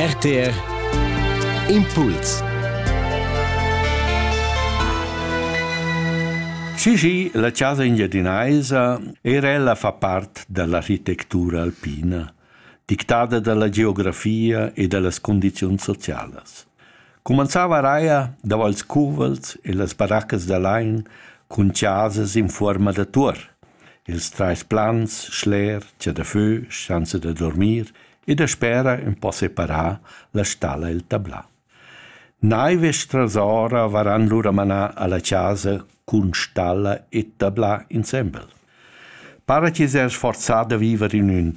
RTR Impuls Cigi, la chasa engiadinaisa, era ella fa part dall'architectura alpina, dictada dalla geografia e dallas condizions socialas. Cumanzava Raia davo ils cuvels e las baraccas da lain cun chasas in fuorma da tuor. Ils trais plans, schler, cha da fö, schanza da dormir e daspera ün po separà la stalla e'l tablà. Naive e strasora varan lura manà alla chasa cun stalla e tablà insembel. Para chi s'ha sforzà da viver in ün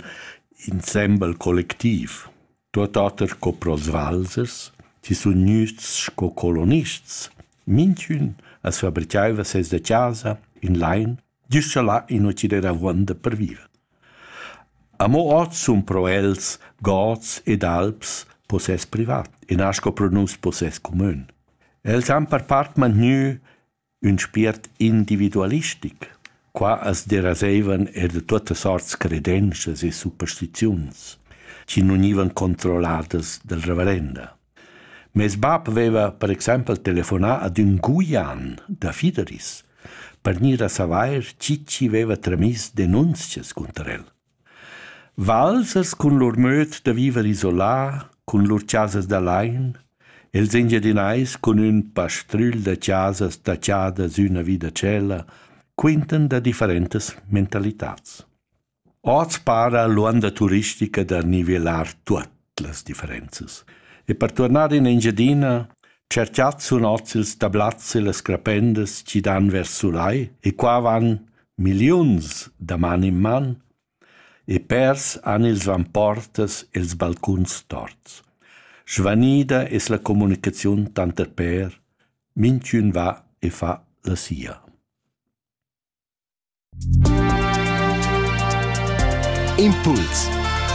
insembel collectiv. Tuot oter co prosvalzers chi sun gnüts sco colonists. Minchün as fabrichaiva seis da chasa in lain güst scha là ino chi'd eira avuonda per viver. Amo hoz sun pro els gods ed alps possess privat e na sco pro nus possess cumün. Els han per part mantgnü Ün spiert individualistic. Qua as deraseivan eir da tuotta sorts credenschas e superstiziuns chi nun gnivan controlladas dal reverenda. Meis bap vaiva per exaimpel telefonà ad ün Guian da Fideris per gnir a savair chi chi vaiva tramiss denunzias cunter el. Valsas cun lur möd da viver isolà, cun lur chasas da lain, e'ls Engiadinais cun ün pastrügl da chasas tachadas üna vi da tschella quintan da differentas mentalitats. Hoz para l'uonda turistica da nivelar tuot. las differenzas. E per tornar in Engiadina cerchat sun ozils da blazze las crapendas chi dan vers sulai e qua van milliuns da man in man e pers han ils vamportas els balcuns torts. Svanida es la comunicaziun tanter per, minchün va e fa la sia. Impuls